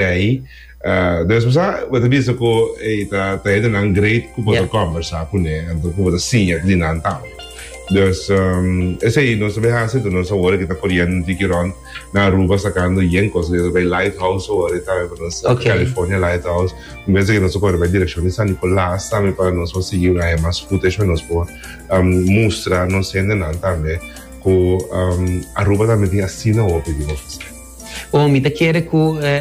Tei. Uh, después a, ah, wata bisa ku e eh, ta ta e nan great ku bota yeah. conversa ku ne, anto ku bota siña di nan tau. Dus um, ese i nos beha se tu nos awore kita koriendo di kiron na Aruba sacando yen cosas de bij Lighthouse awore ta pa nos okay. California Lighthouse. Un vez que nos corre bij dirección de San Nicolás también para nos pa seguir una más footage para nos por um, mostrar nos gente nan también ku um, Aruba también tiene así na opi di office. Bon, mi ta kere ku e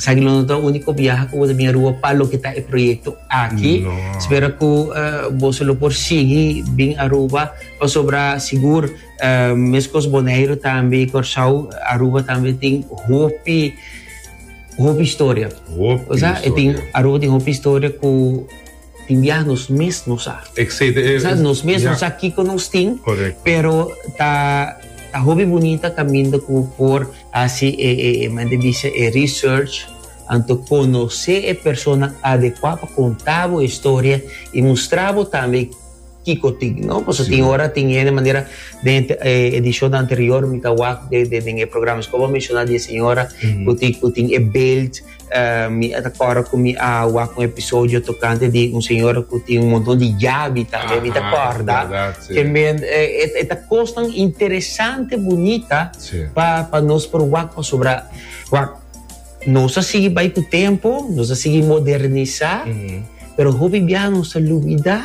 Sagilu no ta úniko biaha ku bo ta bin a Rua pa loke ta e proyekto aki. Spera ku boso lo por sigui bin Aruba pasobra sigur meskos Boneiru tambe i Kòrsou, Aruba tambe tin hopi, hopi historia. Hopi historia. Kusá? E tin, Aruba tin hopi historia ku. Tin biaha nos mes no sa. Exacto. Nos sa, nos mes no sa kico nos tin. Correcto. Pero ta, ta hopi bunita caminda cu por haci e, e, e, como ente dice, e research, anto conoce e persona adecua pa conta bo e historia y mustra bo tambe kico tin, no? Pasobra tin ora tin hende manera den e edicion anterior mi ta wak den, den, den e programa escoba menciona di e señora cu tin, cu tin e belt. Mi a ta kòrda ku mi a wak un episodio tokante di un señora ku tin un monton di yabi tambe. Mi ta kòrda kenbei e ta kosnan interesante, bunita pa nos por wak pasobra nos a sigui bai ku tempu, nos a sigui modernisá, pero hopi biaha nos ta lubidá.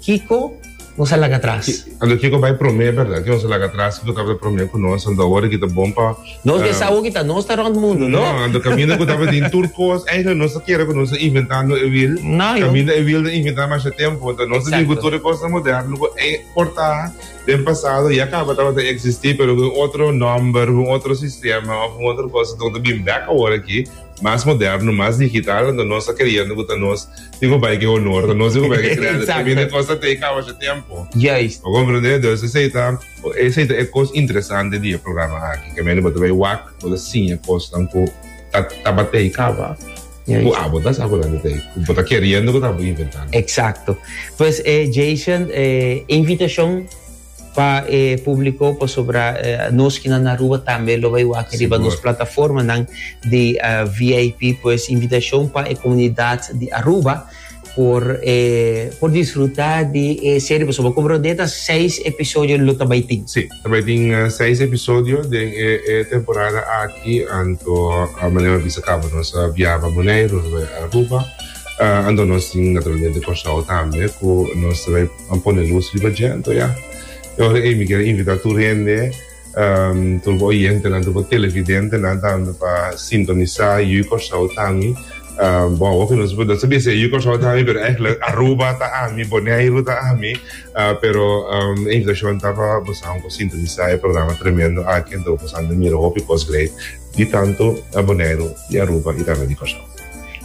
Kiko nos a laga tras? Ando kiko bai promé bèrdat ke nos a laga tras? Kiko tabata promé ku nos? Ando awor aki ta bon pa. Nos ke sa hopi ta nos ta rònt mundu, no? No, ando kaminda ku tabata tin tur kos. Èiklèk nos ta kere ku nos ta inventando e wiel. No, yo. Kaminda e wiel ta inventá masha tempu. Entò nos ta bin ku tur e kosnan moderno ku e portá den pasado ya kaba tabata eksistí pero ku un otro nòmber, ku un otro sistema òf un otro kos. Entò ta bin bèk awor aki mas moderno, mas digital. Entò nos ta kreyendo ku ta nos. Digo bai que honor, no digo bai que credo. También de cosas te cabo de tiempo. Yes. O comprende, dus is eta, is eta e cos interesante di e programa aki. Que meni bota bai wak, bota siña cos tan ku tabatei caba. Yes. Ku abo ta sabo dan te, ku bota queriendo ku tabo inventando. Exacto. Pues eh Jason, eh invitacion. Pa e publico pasobra nos kinan na Aruba tambe lo bay wak riba nos plataformanan di VIP pues invitacion pa e comunidad di Aruba por por disfruta di e serie pasobra como Rondé ta seis episodio lo ta bay tin. Si, ta bay tin seis episodio den e temporada aki anto manera mi a bisa caba nos a biaba Boneiru nos a bay Aruba anto nos tin naturalmente Kòrsou tambe cu nos ta bay An pone lus riba djento ya. E ora ey mi kier invita tur hende, tur bo oyentenan, tur bo televidentenan tambe pa sintonisa Yu Corsou ta ami. Bo a hopi nos no sabia si e Yu Corsou ta ami pero eigenlijk Aruba ta ami, Boneiru ta ami. Pero e invitacion ta pa bosaun por sintonisa e programa tremendo aki anto bosaun ta mira hopi cos grei di tanto Boneiru, di Aruba y tambe di Corsou.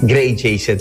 Grei Jason.